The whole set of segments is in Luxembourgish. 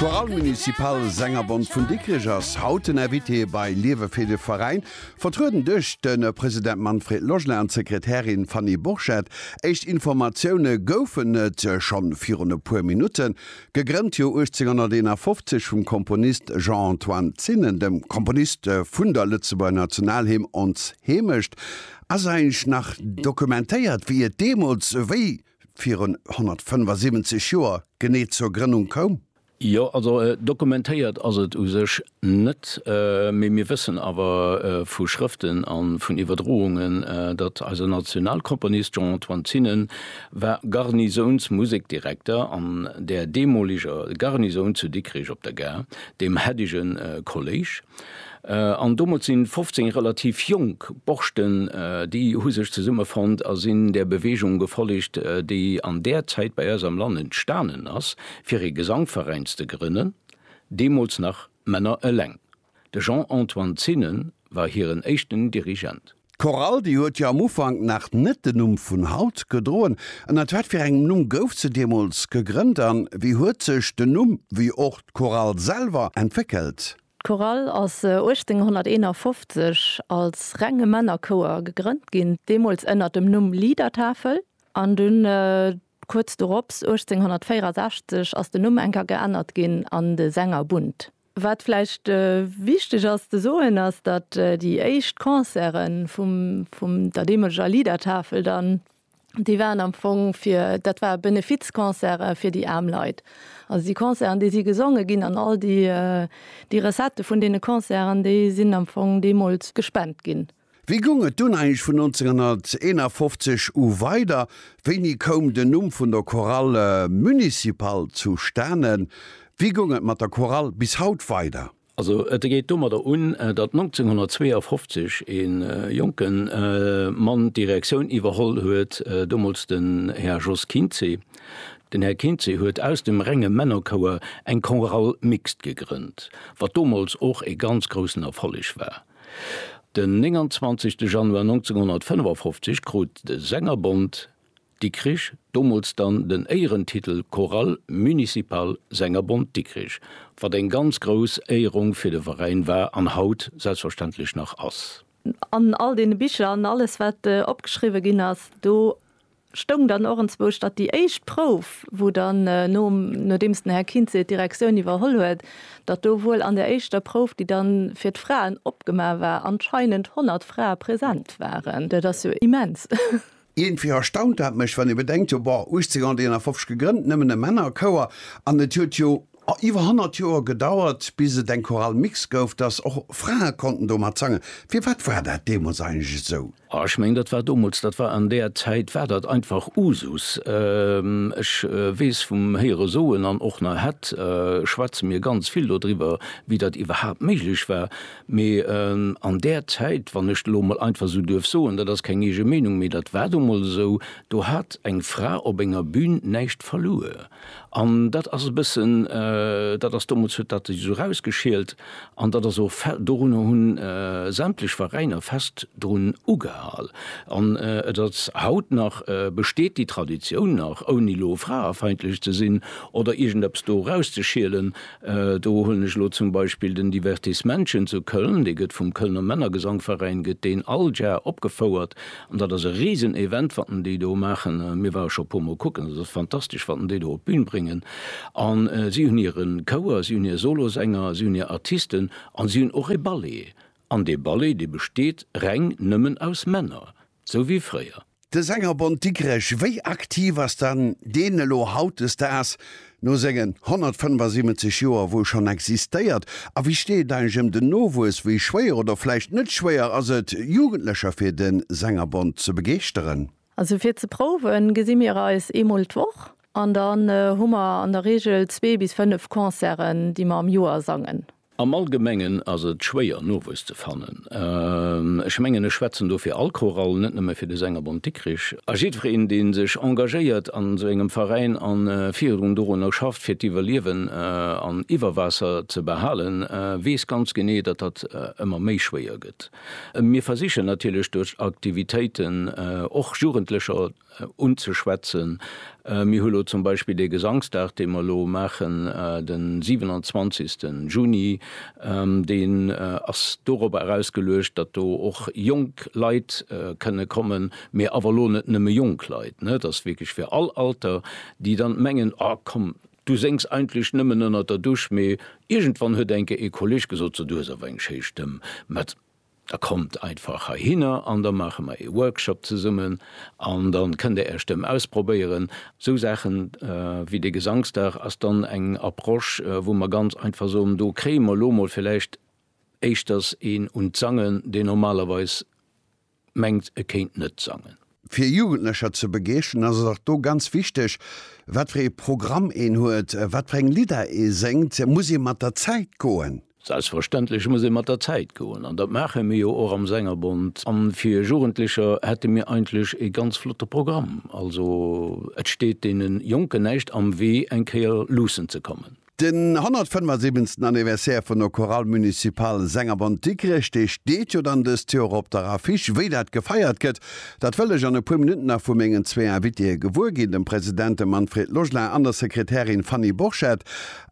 D'Chorale Municipale Sängerbond vun Dikrech ass haut den Invité bei Liewe fir de Veräin, vertrueden duerch de President Manfred Loschner an d'Sekretärin Fanny Borchert. Éischt Informatioune goufen et schonn virun e puer Minutten. Gegrënnt Joer 1851 vum Komponist Jean-Antoine Zinnen, dem Komponist vun der Lëtzebuerger Nationalhymn Ons Heemecht, ass eigentlech nach dokumentéiert, wéi et deemools wéi virun 175 Joer genee zur Grënnung koum? Jo, also dokumentéiert ass et u sech net, mee mir wëssen awer vu Schrëften a vun Iwwerdroungen, datt eise Nationalkomponist Jean-Antoine Zinnen war Garnisounsmusekdirekter an där deemoleger Garnisoun zu Dikrich op der Gare, dem Heddegen Kolléisch. An domat sinn 15 relativ jonk Borschten, déi hu sech zesummefonnt a sinn där Beweegung gefollegt, déi an där Zäit bei eis am Land entstanen ass, fir ee Gesangveräin ze grënnen, deemools nach Männer eleng. De Jean-Antoine Zinnen war hiren éischten Dirigent. D'Chorale, déi huet jo am Ufank nach net den Numm vun haut gedroen. Ënnert wat fir engem Numm gouf se deemools gegrënnt an wéi huet sech den Numm wéi och d'Chorale selwer entwéckelt? D'Chorale ass 1851 als renge Männerchouer gegrënnt ginn, deemools ënnert dem Numm Liedertafel an dunn kuerz dorops 1864 ass den Numm enker geännert ginn an de Sängerbund. Wat vläicht wichteg ass ze soen, ass datt déi éischt Concerte vum vum der deemoleger Liedertafel dann, déi waren am Fong fir, dat ware Benefizconcerte fir déi aarm Leit. Also déi Concerten, déi si gesonge ginn an all déi déi Recettë vun deene Concerten, déi sinn am Fong deemools gespent ginn. Wéi goung et dunn eigentlech vun 1951 u weider? Wéini koum den Numm vun der Chorale municipale zustanen? Wéi goung et mat der Chorale bis haut weider? Also et geet domadder un, datt 1952 e jonke Mann d'Direktioun iwwerholl huet, domols den Här Jos Kinzé. Den Här Kinzé huet aus dem renge Männerchouer eng Chorale mixte gegrënnt, wat domols och e ganz groussen Erfolleg war. Den 29 Januar 1955 krut de Sängerbond Dikrich, domols dann den Éierentitel Chorale Municipale Sängerbond Dikrich, wat eng ganz grouss Éierung fir de Veräin war an haut selbstverständlech nach ass. An all deene Bicher an alles wat opgeschriwwe ginn ass, do stoung dann och enzwousch, datt déi éischt Prouf, wou dann, nodeems den Här Kinzé d'Direktioun iwwerholl huet, datt do wuel an der éischter Prouf, déi dann fir d'Fraen opgema war, anscheinend 100 Frae present waren. Dat ass jo immens! Iergendwéi erstaunt dat mech, wann ee bedenkt, jo, bon, 1851 gegrënnt, nëmmen e Männerchouer, an et huet jo A iwwer 100 Joer gedauert, bis et eng Chorale mixte gouf, dass och Frae konnten domat sangen. Firwat war dat deemools eigentlech esou? A, Ech mengen, dat war domols, dat war an där Zäit war dat einfach Usus. Ech weess vum Héiere soen, an och nach hätt schwätze mir ganz vill dodriwwer, wéi dat iwwerhaapt méiglech war. Mee an där Zäit, wann ech elo emol einfach esou duerf soen, dat ass keng eege Meenung, mee dat war domols esou, do hat eng Fra op enger Bün näischt verluer. An dat ass e bëssen dat, ass domols huet dat sech esou rausgeschielt an dat ass och fe dorunner hunn sämtlech Veräiner fest drun ugehal an et ass haut nach besteet déi Traditioun nach, ouni elo fraefeindlech ze sinn oder iergendeppes do erauszeschielen. Do huelen ech elo zum Beispill den Divertismännchen zu Köln, dee gëtt vum Kölner Männergesangveräin gëtt deen all Jar opgefouert An dat ass e risen Event watten déi do maachen. Mir ware scho e puermol kucken, dat ass fantastesch watten déi do op d'Bün bréngen. An si hunn hire Chouer, si hunn hir Solosänger, si hunn hir Artisten an si hunn och e Ballet. An dee Ballet dee besteet reng nëmmen aus Männer, sou wéi fréier. De Sängerbond Dikrech, wéi aktiv ass dann deen elo hautdesdaags? No sengen 175 Joer, wou e schonn existéiert? A wéi steet et eigentlech ëm den Nowuess? Wéi schwéier oder vläicht net schwéier ass et, Jugendlecher fir de Sängerbond ze begeeschteren? Also fir ze prouwen, gesi mir eis eemol d'Woch an dann hu mer an der Reegel zwee bis fënnef Concerten, déi mer am Joer sangen. Am Allgemengen ass et schwéier Nowuess ze fannen. Ech mengen ech schwätzen do fir all Chorall, net nëmme fir de Sängerbond Dikrich. A jiddwereen deen sech engagéiert an esou engem Veräin an virudrun dorunner schafft fir d'Iwwerliewen an iwwer Waasser ze behalen, weess ganz genee datt dat ëmmer méi schwéier gëtt. Mir versichen natierlech duerch Aktivitéiten och Jugendlecher unzeschwätzen. Mir hu lo zum Beispill dee Gesangsdag, dee mer elo maachen, de 27. Juni, deen ass dorobber erausgeluecht, datt do och jonk Leit kënne kommen, mee awer elo net nëmme jonk Leit, ne, et ass wierklech fir all Alter, déi dann mengen, A komm, du séngs eigentlech nëmmen ënnert der Dusch, mee iergendwann huet eng Kéier ee Kolleeg gesot, So, du hues awer eng schéi Stëmm. Mä Da kommt einfach heihinner an da maache mer ee Workshop zesummen an dann kënnt Der Är Stëmm ausprobéieren. Esou Saachen wéi dee Gesangsdag ass dann eng Approche, wou mer ganz einfach soen, do kréie mer elo mol villäicht éischters een un d'Sangen, deen normalerweis mengt, e kéint net sangen. Fir Jugendlecher ze begeeschteren ass et och do ganz wichteg, wat fir ee Programm een huet, wat fir eng Lidder ee séngt. Muss ee mat der Zäit goen? Selbstverständlech muss ee mat der Zäit goen an dat maache mir jo och am Sängerbond. A fir Jugendlecher hätte mir eigentlech ee ganz flotte Programm. Also et steet deene Jonken näischt am Wee eng Kéier luussen ze kommen. Den 175. Anniversaire vun der Chorale Municipale Sängerbond Dikrech, dee steet jo dann dëst Joer op der Affiche. Wéi dat gefeiert gëtt, dat wëll ech an e puer Minutten nach vu mengen zwee Invitéë gewuer ginn, dem President, dem Manfred Logelin, an der Sekretärin Fanny Borchert.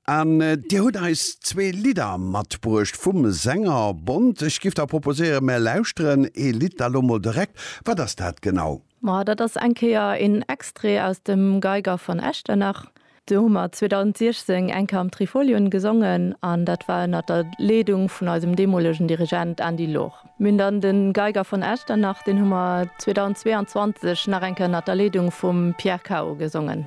An Dir hutt eis zwee Lidder matbruecht vum Sängerbond. Ech giff da proposéieren, mär lauschteren ee Lidd da lo mol direkt. Wat ass dat genau? Ma dat ass eng Kéier een Extrait aus dem Geiger von Echternach. Do hu mer 2016 eng Kéier am Trifolion gesongen an dat war ënnert der Leedung vun eisem deemolegen Dirigent Andy Loch. Mir hunn dann de Geiger von Echternach, deen hu mer 2022 nach eng Kéier ënnert der Leedung vum Pierre Cao gesongen.